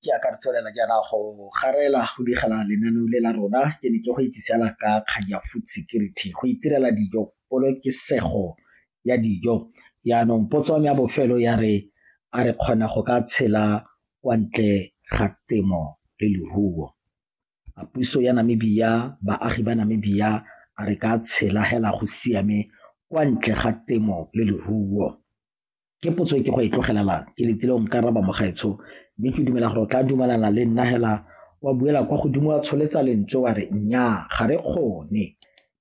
Ke a ka re tswelela jaana go garela go digela lenaneo le la rona ke ne ke go itsisela ka kgang ya food security go itirela dijo polokesego ya dijo yaanong potso ya bofelo ya re a re kgona go ka tshela kwa ntle ga temo le leruo a puso ya Namibia baagi ba Namibia a re ka tshela hela go siame kwa ntle ga temo le leruo ke potso e ke go e tlogelelang ke letile o nka raba mogaetsho mme ke dumela gore o tla dumelana le nna hela wa buela kwa godimo wa tsholetsa lentswe wa re nnyaa ga re kgone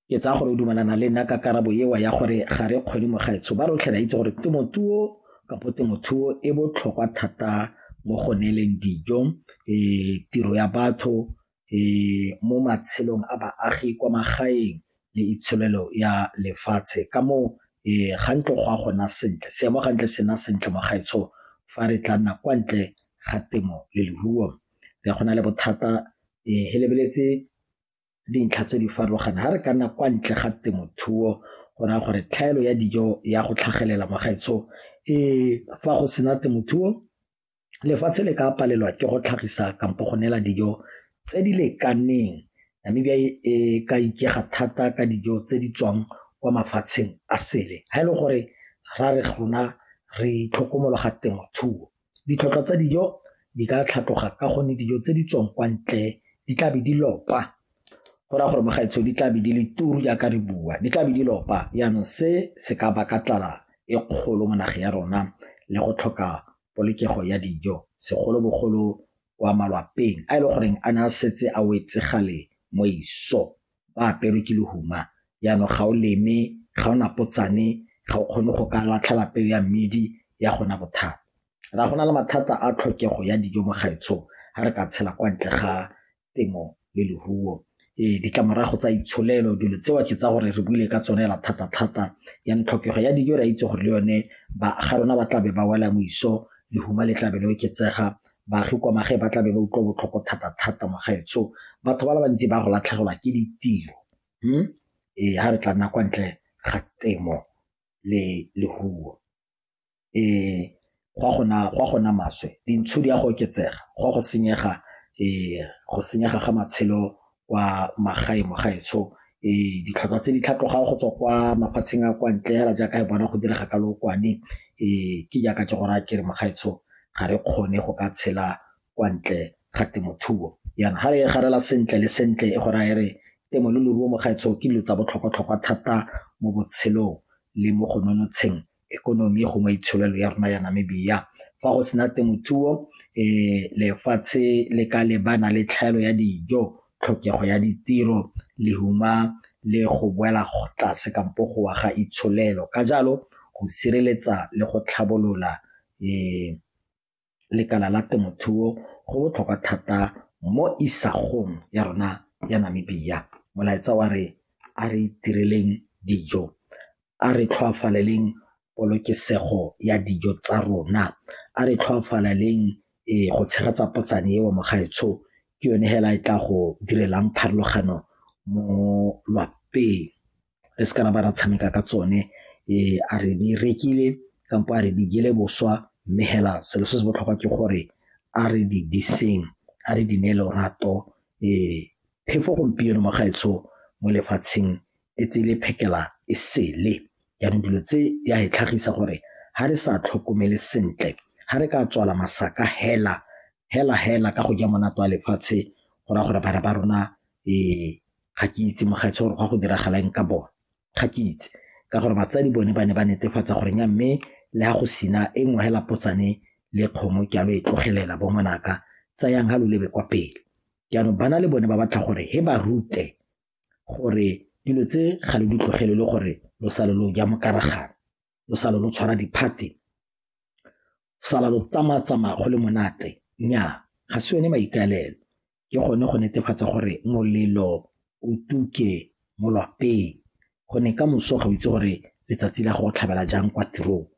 ke tsaya gore o dumelana le nna ka karabo ewa ya gore ga re kgone mogaetsho ba rotlhe ra itse gore temothuo kapo temothuo e botlhokwa thata mo go neeleng dijo um tiro ya batho mo matshelong a baagi kwa magaeng le itsholelo ya lefatshe ka moo ga ntlo go a gona sentle seemo ga ntle sena sentle mo gaetsho fa re tla nna kwa ntle ga temo le leruo re go na le bothata he lebeletse dintlha tse di farologaneng ga re ka nna kwa ntle ga temothuo go raya gore tlhaelo ya dijo ya go tlhagelela mo gaetsho fa go sena temothuo lefatshe le ka palelwa ke go tlhagisa kampo go neela dijo tse di lekaneng. Namibia e ka ikaega thata ka dijo tse di tswang kwa mafatsheng a sele ha e le gore ra re rona re itlhokomologa temothuo. Ditlhotlhwa tsa dijo di ka tlhatloga ka gonne dijo tse di tswang kwa ntle di tlabe di lopa. go raya gore mogaetsho di tlabe di le turu jaaka re bua di tlabe di lopa jaanong se se ka baka tlala e kgolo mo nageng ya rona le go tlhoka polokego ya dijo segolobogolo kwa malwapeng a e le goreng a ne a setse a wetse gale mo iso ba aperwe ke lehuma jaanong ga o leme ga o napotsane ga o kgone go ka latlhela peo ya mmidi ya gona bothata ra go na le mathata a tlhokego ya dijo mo gaetsho ga re ka tshela kwa ntle ga temo le leruo. Ee, ditlamorago tsa itsholelo dilo tseo ke tsa gore re buile ka tsone la thata-thata ya tlhokego ya dijo re a itse gore le yone ba ga rona ba tlabe ba wela moiso lehuma le tlabe le oketsega baagi kwa magae ba tlabe ba utlwa botlhoko thata-thata mo gaetsho batho ba le bantsi ba go latlhegelwa ke ditiro hmm? ee ga re tla nna kwa ntle ga temo le leruo go a go nna maswe, dintsho di a go oketsega, go a go senyega go senyega ga matshelo kwa magaeng mo gaetsho. Ditlhwatlhwa tse di tlhatlogang go tswa kwa mafatsheng a kwa ntle fela jaaka re bona go direga ka lookwane ke jaaka ke go raya ke re mo gaetsho ga re kgone go ka tshela kwa ntle ga temothuo. Jaanong ga re e garela sentle le sentle e go raya e re temo le leruo mo gaetsho ke dilo tsa botlhokwa-tlhokwa thata mo botshelong le mo go nonotsheng economy gongwe itsholelo ya rona ya Namibia fa go sena temothuo um lefatshe le ka lebana le tlhaelo ya dijo tlhokego ya ditiro lehuma le go boela tlase kampo go wa ga itsholelo ka jalo go sireletsa le go tlhabolola um lekala la temothuo go botlhokwa thata mo isagong ya rona ya Namibia. Molaetsa wa re a re itireleng dijo, a re tlhoafaleleng polokesego ya dijo tsa rona, a re tlhoafaleleng go tshegetsa potsane eo mogaetsho ke yone hela e tla go direlang pharologano mo lwapeng. re se ka ra ba ra tshameka ka tsone a re di rekile kampo a re di jele boswa mme hela selo se se botlhokwa ke gore a re di diseng a re di ne lorato phefo gompieno magaetsho mo lefatsheng e tsele phekela e sele jaanong dilo tse di a e tlhagisa gore ga re sa tlhokomele sentle ga re ka tswala masaka hela hela hela ka go ja monate wa lefatshe go raya gore bana ba rona ga ke itse mogaetsho gore go ya go diragala eng ka bone ga ke itse ka gore batsadi bone ba ne ba netefatsa gore nya mme le ga go sina e nngwe hela potsane le kgomo ke alo e tlogelela bo ngwanaka tsayang ga lo lebe kwa pele jaanong bana le bone ba batla gore he ba rute gore dilo tse ga lo di tlogele le gore lo sale lo ja mokaragana lo sale lo tshwara diphate sala lo tsamaya-tsamaya go le monate nnyaa ga se yone maikaelelo ke gone go netefatsa gore molelo o tuke mo lwapeng gonne ka moso ga o itse gore letsatsi la go tlhabela jang kwa tirong